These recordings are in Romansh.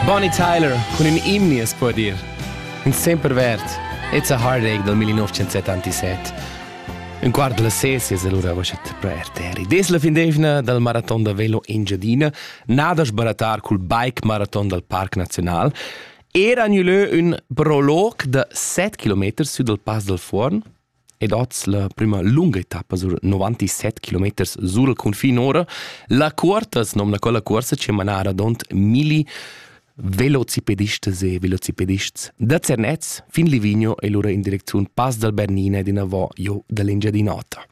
Bonnie Tyler cun ün imni as po dir. In sempre verd. It's a heartache del 1977. Un quart della ses es allura voschet pro RTR. Des la fin d'evna dal maraton da velo in Giadina, nada sbaratar cul bike maraton dal Parc Naziunal, era annuleu ün prolog da 7 km sü dal Pass del Fuorn, ed oz la prüma lunga etappa sur 97 km sur il cunfin ora. La cuorta as nomna quella cuorsa che mana radont milli velocipedistas e velocipedists da Zernez fin Livigno e lura in direcziun Pass dal Bernina ed inavò jo dall'Engiadin'Ota.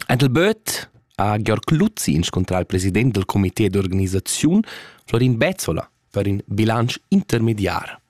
Andel Böth ha Georg Luzzi inscontrà il president del comité d'organisaziun Florin Bezzola per in bilancio intermediar.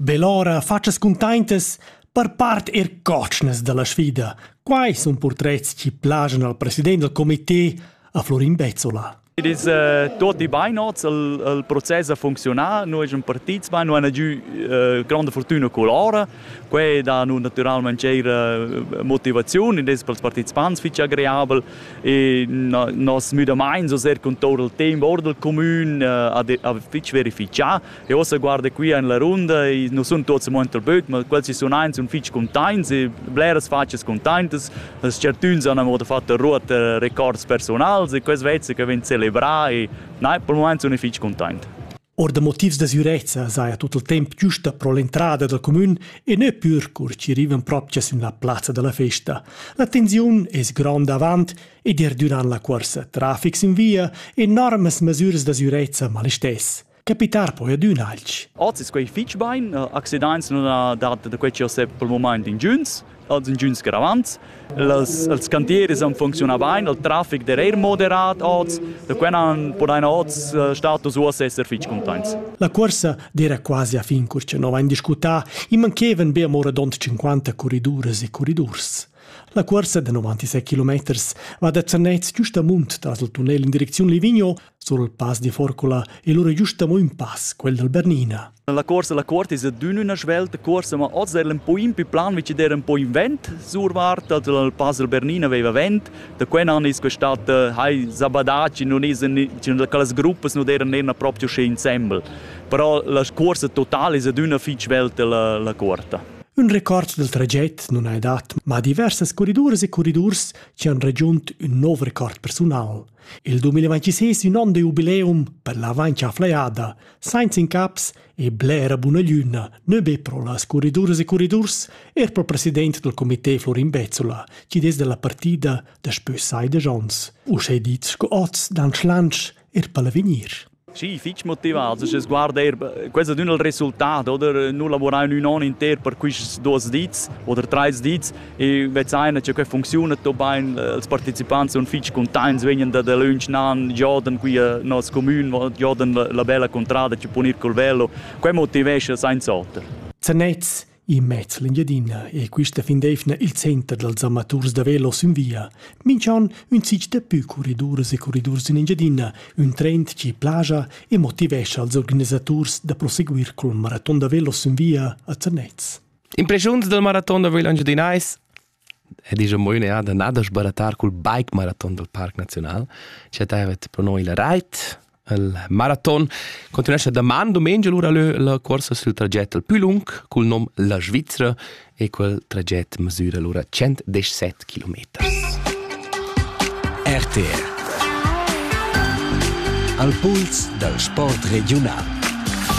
Be lura fatschas cuntaintas per part eir cotschnas da la sfida. Quai sun purtrets chi plajan al president dal comité, a Florin Bezzola. It is uh, tutti bainots, il, il process ha funzionà, noi siamo partiti, ma non hanno giù uh, grande fortuna con loro. Quei dà naturalmente eir motivazione, das per i partecipanti fitch agreabel e no, nos müdamains, so sehr con tutto il tempo ora del comune, uh, a, a fitch verifichar E ossa guarda qui en la runda e nous sun tots mo entr böt, ma quels chi sun aint sun fitg containts e bleras facias containtas. Las certuns han amo fatto ruoter records personals e quels vezza che vegn celebra e nein, per moment sun fitg containt. Or da motivs da sürezza saja tut il temp giusta pro l'entrada dal comün e ne pür cur chi rivan propcha sin la plazza da la festa. La tensiun es gronda avant ed er durant la cuorsa trafics in via enormas mesüras da sürezza mal istess. Capitar poi adüna alch. Oz es quai fich bain, accidaints nun ha dat da quai chi ho set pel mumaint ingüns, als ingüns gravants. Las, els cantieris han funcziunà bain, il trafic d'er eir moderat oz, da quai nan podaina oz status uoss esser fich cuntaints. La cuorsa d'eira quasi a fin cur cha no vain discutà, i manchevan be amò radond 50 corriduras e corridurs. La cuorsa da 96 km va da Zernez giust amunt tras il tunnel in direcziun Livigno Sul pass di Forcula è lura giusta mo un pass, quel dal Bernina. La corsa la corta es adün üna svelta corsa, ma oz era un po in più plan, vici era un po in vent sur Varta, il pass del Bernina aveva vent, da quel an es questata hai zabadaci, non es c'erano quelle gruppe non erano erano proprio sche ensemble. Però la corsa totale es adüna fitch svelta la, la corta. Un record del traget non ha dat, ma diversas corriduras e corridurs ci han raggiunt un nov record personal. Il 2026 ün on da jubileum per la vaincha flaïada, sainza incaps e blera buna glüna, nö be pro las curriduras e curridurs, eir pro president dal comité Florin Bezzola, chi'd es da la partida daspö sai desch ons, uschè dit scu hoz dal schlantsch eir pel avegnir. Sì, fich motivats, sche sguard eir quels ad ün il resultat oder nu lavurà in ün on inter per quists duos dis oder trais dis e vezzaina cha que funcziuna dobain els partecipants sun fich cuntaints, vegnan da dalöntsch nan, giodan qui a nos comün, giodan la bella cuntrada, chi pun ir col velo. Quai motivescha sainz'oter. Zanets In mez l'Engiadina è questa fin d'eivna il center dals amaturs da velo sün via. Minch'on ün sich da pü corriduras e corridurs in Engiadina, ün trend chi plaja e motivescha als organisaturs da proseguir col maraton da velo sün via a Zernez. Impreschuns dal maraton da velo engiadinais? ed isch amo üna jada nà da sbaratar cul bike maraton dal Parc Naziunal. Scha taiva pro noi la rait, il maraton continuescha daman dumengia lura lö la cuorsa sül traget al pü lung cul nom La Svizra e quel traget mesüra lura 117 kilometers. RTR Al puls dal sport regiunal